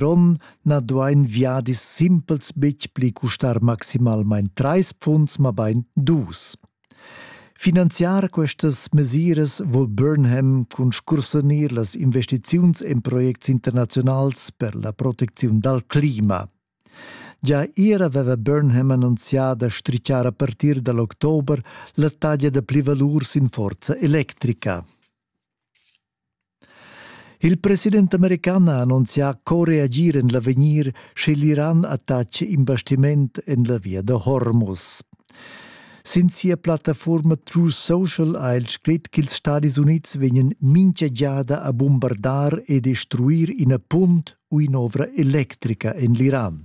Ron na duain viadis simpels betg pli custar maximalmain trais pfunds, mabain dus. Finanziar questas mesiras vul Burnham cun scursanir las investiziuns en projects internaziunals per la protecziun dal clima. Gia ier aveva Burnham annunzià da strichar a partir da l'october la taglia da plivalur sin forza electrica. Il president american ha annunzià co reagir en l'avegnir, sche l'Iran attaccia in bastiment en la via da Hormuz. Sin sia plattafuorma True Social ha el scrit ch'ils Stadis Unids vegnan mincha giada a bombardar e destruir ina punt u in'ovra electrica en l'Iran.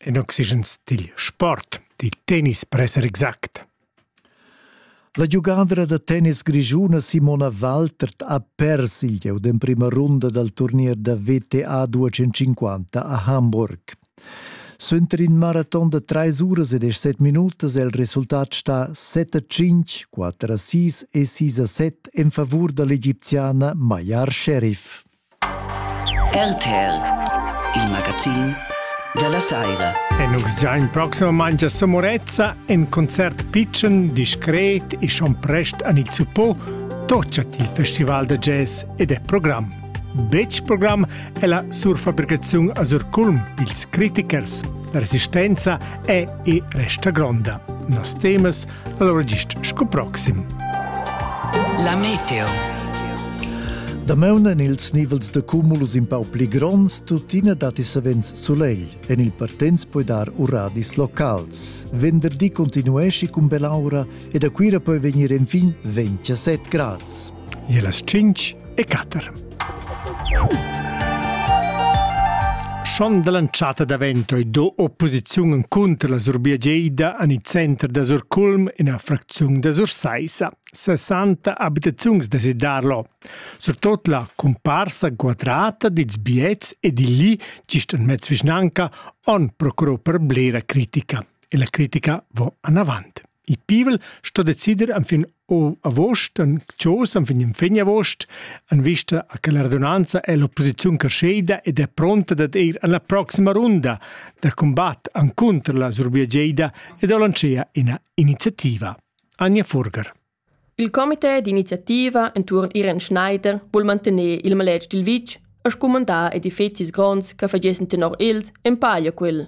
In oxygen stil sport, di tennispresser exact. La giugadra da tennis grischuna Simona Waltert ha pers il gieu d'emprima runda dal turnier da WTA 250 a Hamburg. Suenter in maraton da trais uras e deschset minutas è il resultat stà 7-5, 4-6 e 6-7 en favur da l'egipziana Mayar Sherif. RTL, il magazin dalla saira. E nus già in proximamaing a Somorezza in concert pitschen, discret e schon prest an il Zupo tochat il festival da jazz ed è program. Betg program è la surfabricaziun a Surculm, ils critichers. La resistenza è e resta gronda. Nos temas Allora dicht sco proxim. La meteo. Dameun en ils nivels de cumulus in pau pli gronds, tuttina datti savens solegl. En il Partenz puoi dar uradis locals. Venderdi continuesci cun belaura e da Cuira poi vegnir enfin 27 grads. e las tschinch e quatter. Schon dall'entschatta davento e do opposiziun contro la Surbia Geida an il center da Surculm in la fracziun da Sursaissa. 60 abitaziuns da Sidarlo. Surtot la comparsa quadrata dils biets e di lì, gist en mezz vischnanca, on procurò per blera critica. E la critica va anavant. Il pivel sto decider enfin agost, en Chos enfin in fin agost, en vista a che la radunanza è l'opposiziun creschida ed è pronta dad ir en la proxima runda da combat encunter la Surbiageda e da lanciar ina iniziativa. Anja Furger. Il comité d'iniziativa enturn Irene Schneider vuol mantener il maletg dil vitg a scumandar edifizis gronds che fagessen tenor els empaglia quel.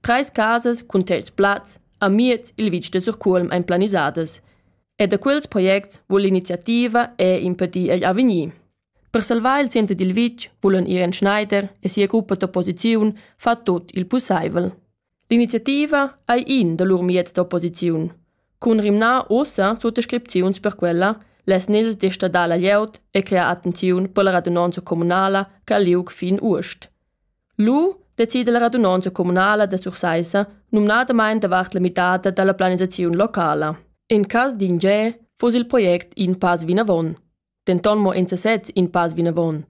Trais casas cun terz plaz amiez il vitg da Surcuolm ein planisadas e da quels projects vul l'iniziativa era impedir igl avegnir. Per salvar il center dil vitg vulan Irene Schneider e sia gruppa d'opposiziun far tut il pusseivel. L'iniziativa ei in da lur mieds d'opposiziun. Cun rimnar ussa suttascripziuns per quella les nils desta dalla glieud e crea attenziun per la radunonza communala che ha liug fin uost. Lu decida la radunonza communala da Sursaissa numnadamain davart la midada dalla planisaziun locala. En cass d'ingè fuss il project in pass vinavon. Denton mo en sesez in pass vinavon,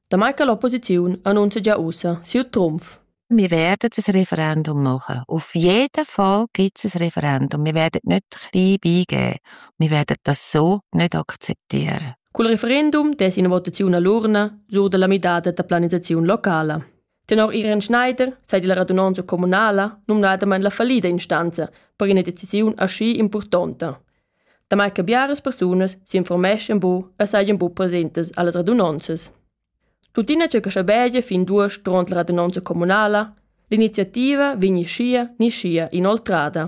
damai che l'opposiziun annunzia gia ussa siu trumf. Wir werden ein Referendum machen. Auf jeden Fall gibt es ein Referendum. Wir werden nicht klein beigeben. Wir werden das so nicht akzeptieren. Cul referendum dess ina votaziun all'urna sur dalla midada da planisaziun locala. Tenor Irene Schneider sei la radunanza communala numnadamain la fallida instanza per ina decisiun aschi impurtonta. Damai che biaras persunas s'informeschan bu e sajan bu presentes allas radunanzas. Tuttina c'è che schabegia fin duas durant la radunanza communala, l'iniziativa vegni scia ni scia inoltrada.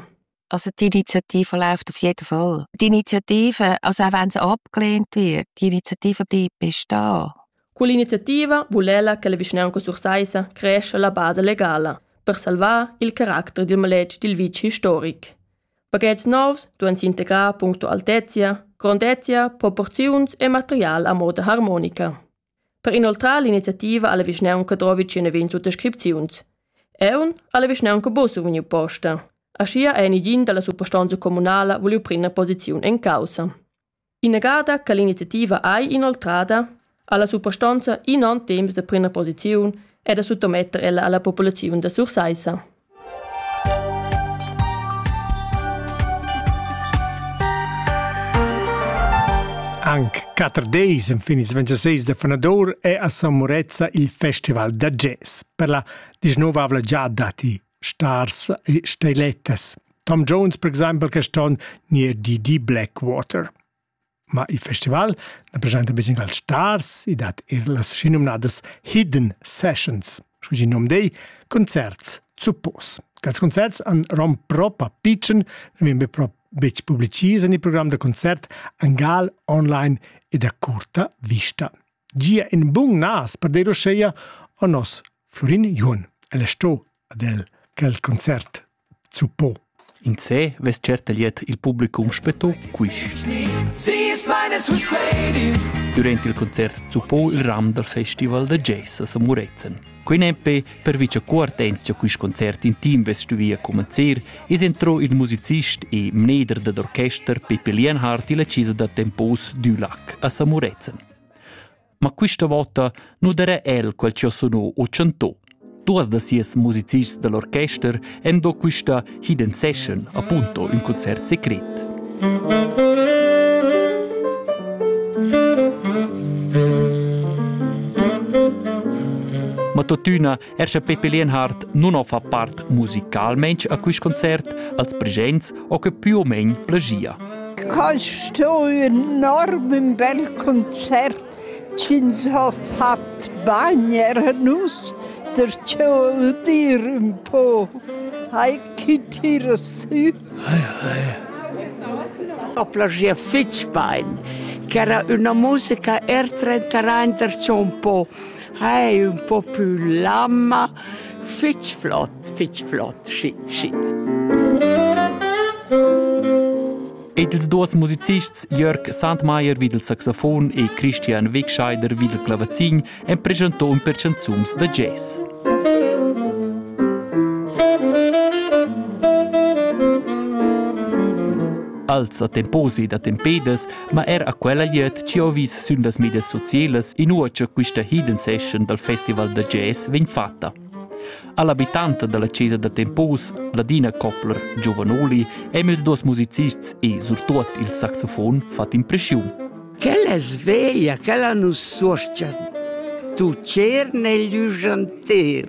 Also die Initiative läuft auf jeden Fall. Die Initiative, also auch wenn sie abgelehnt wird, die Initiative bleibt bestehen. Quell'iniziativa vuol ella che le vicinanze sursaisa cresce la base legala per salvare il carattere del maletg del vice historic. Paghetti nuovi duan s'integrar punto altezia, grandezia, proporziuns e material a moda harmonica. Per inoltrar l'iniziativa ha la vischnaunca drovi tschient ventg sutascripziuns. Eu ha la vischnaunca Bosso vegniu posta. Aschia ei negin dalla suprastonza communala vuliu prender posiziun en caussa. Inagada che l'iniziativa ei inoltrada, ha la suprastonza in on temps da prender posiziun e da suttometter ella alla populaziun da Sursaissa. Anc quatter deis enfin ils 26 da fanadur è a San Murezza il festival da jazz per la disnovavla giada datti Stars e Stilettas. Tom Jones, per exempel, quest'onn ni er Didi Blackwater. Ma il festival na presenta be singuls stars, i dat er las schinumnadas Hidden Sessions, sco il nom dei, concerts zuppos. Quels concerts han rom propa pitschen, ne vegn be pro betg publicis en il program da concert Angal online e da curta vista. Gia in bun nas per dei roscheia o nos Florin Jun. El è sto ad el quel concert zuppò. In se vess certa liet il publicum spetto quist. Durant il concert zuppò il ram dal festival da jazz a San Murezzan. Quei nempe per vice cuortens cha quist concert in team vess stuvia comenzer, es entrò il musicist e mneder dad orchester Pepe Lienhardt illa chisa da tempos Dulac a San Murezzan. ma quista vota nu darà el quel chi ho sunò o chantò. Duas da sias musicists dell'orchester han do quista Hidden Session appunto ün concert secret. Ma tuttina Er sche Pippi Lienhardt nun ho fa part musicalmaing a quist concert, als presents ho que più o meno plegia. Kannst du enorm bel Konzert ins ha fat bagner nus der tschol dir un po. Hai kitir sü. Hai hai. Ho plagia fitch bein, che era una musica er trentarain der un po. Hai ün po pü lamma, fich flot, fich flot, schi, schi. Ed ils duos musicists Jörg Sandmeier vid il saxofon e Christian Wegscheider vid il clavazin han presentò ün per chanzuns da jazz. als attemposi da tempedas ma er a quella glieud chi ho vis sün las medias socielas inua cha quista hidden session dal Festival da jazz vegn fatta. All'abitanta dalla chesa da Tempos, Ladina Koppler, giovanoli, hem ils duos musicists e surtuot il saxofon fat impreschiun. Quella sveglia, quella nu suoscha. Tu cer negli ujanter.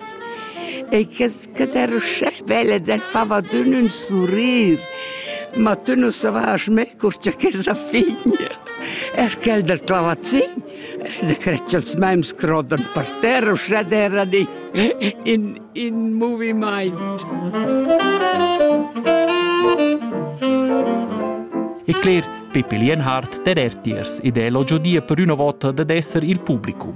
E che che derschè vella d'en fava d'ün ün surrir, ma tü nu savast mê cur cha chesa figlia, er quel del clavazin, da cret cha'ls mems crodan per terra uschè derra di in, in movimaint. E cler, Pippi Lienhardt der ertiers ed elogio dir per üna vota dad esser il publicum.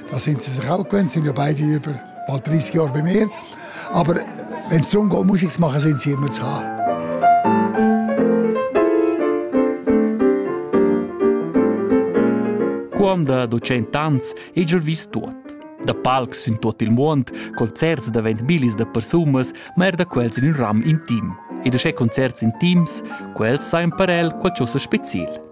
da senza rauchen können, sind ja beide über bald 30 Jahre bei mir. Aber wenn es darum geht, Musik zu machen, sind sie immer zu haben. Quando da cent'anns igl vis tot. Da palcs sün tot il muond, concerts davent millis da persunas, ma er da quels in un ram intim. E da che concerts intims, quels sain per el qualcosa special.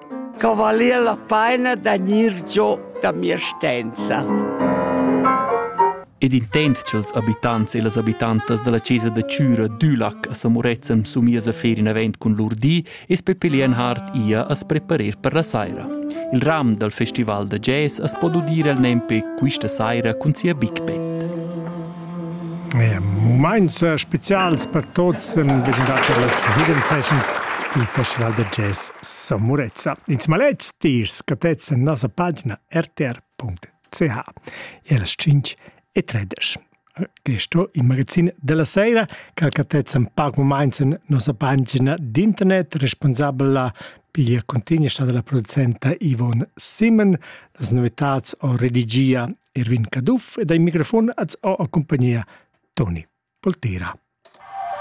Co valia la paina da gnir giò da mia stenza? Ed intent cha'ls abitants e las abitantas da la chesa da Chüra Dülac a Samurezzan sumiesa fer in event cun lur di es Peppi Lienhard ia as preparer per la saira. Il ram dal festival da jazz as po udir el nempe quista saira cun sia Big Band. Mumaints specials per tuots sun presentate las Hidden Sessions dal Festival da jazz San Murezza. In smaletg dir scattets in nossa pagina rtr.ch e las 5 e 13. Quist ho il magazin della sera che cattez in pac mumaints in nossa pagina d'internet responsabla piglia cuntigna sta dalla producenta Yvonne Simon las novitats o redigia Erwin Caduff ed ei microfon ad accompagnia Toni Poltera.